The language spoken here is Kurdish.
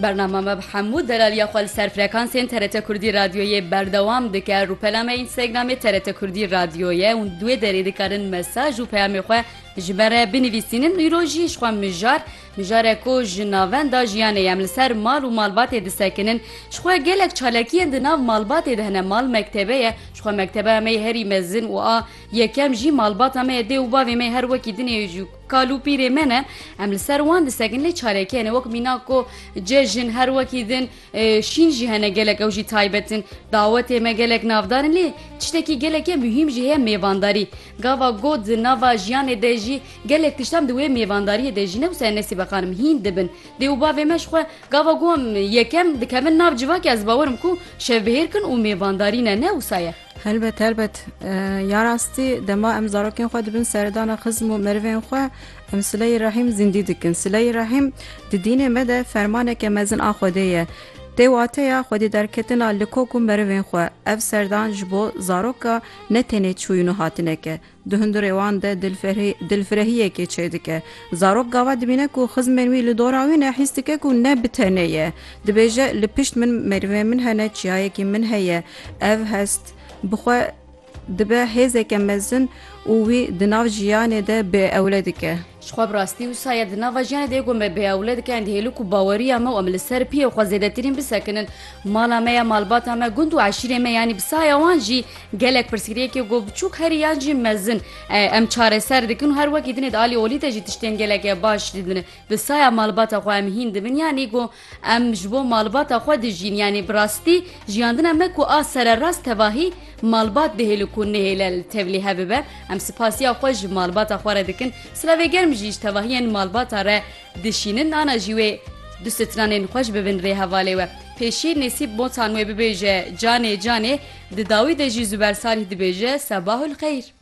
Bernama me bi hemû delaliya xwe li ser frekansên TRT Kurdî Radyoyê berdewam dike. Rûpela me Instagramê TRT Kurdî Radyo ye û di wê derê dikarin mesaj û peyamê xwe ji me re binivîsînin. Îro jî ji xwe mijar mijarek ku ji navenda jiyanê em li ser mal û malbatê disekinin. Ji xwe gelek çalakiyên di nav malbatê de hene. Mal mektebe ye. Ji xwe mekteba me yê herî mezin û a yekem jî malbata me ye. Dê û bavê me her wekî din ê. Kal û pîrê me ne, em li ser wan disekin lê çareke hene wek mînak ku cejin her wekî din şîn jî hene gelek ew jî taybet in. Dawetê me gelek navdar in lê tiştekî geleke muhîm jî heye mêvandarî. Gava got di nava jiyanê de jî gelek tiştan di wê mêvandariyê de jî ne wisa ye ne sîbeqan im hîn dibin. Dê û bavê me ji xwe gava got em yekem dikevin nav civakê ez bawer im ku şevbihêr kin û mêvandarî ne ne wisa ye. Helbet helbet ya rastî dema em zarokên xwe dibin seredana xizm û merivên xwe em sileyê rehîm zîndî dikin. Sileyê rehîm di dînê me de fermaneke mezin a Xwedê ye. Tê wateya Xwedî derketina li kok û merivên xwe. Ev serdan ji bo zaroka ne tenê çûyîn û hatineke, Di hundirê wan de dilfirehiyekê çêdike. Zarok gava dibîne ku xizmên wî li dora wî ne, hîs dike ku ne bi tenê ye. Dibêje, li pişt min mêrivên min hene, çiyayekî min heye. Ev hest bi xwe dibe hêzeke mezin û wî di nav jiyanê de bêewle dike. Ji xwe bi rastî wisa ye di nava jiyanê de ku me bi ewle dike ên hêlûk û baweriya me û em li ser piyê xwe zêdetirîn bisekinin. Mala me ye, malbata me, gund û eşîrê me yanî bi saya wan jî gelek pirsgirêkê ku biçûk herî yan jî mezin em çareser dikin û her wekî dinê di alî olî de jî tiştên gelek baş didin. Di saya malbata xwe em hîn dibin yanî ku Em ji bo malbata xwe dijîn yanî bi rastî jiyandina me ku a sererast tevahî malbat dihêlu ku nihêle li tevlî hev bibe. Em sipasiya xwe ji malbata xwe re dikin. Silavê germ jî ji tevahiyên malbata re dişînin ana jî wê du stranên xwe ji bibin rê hevalê we. Pêşî Nêsîb Botan wê bibêje canê canê di dawî de jî Zuber Salîh dibêje Sebahul xeyr.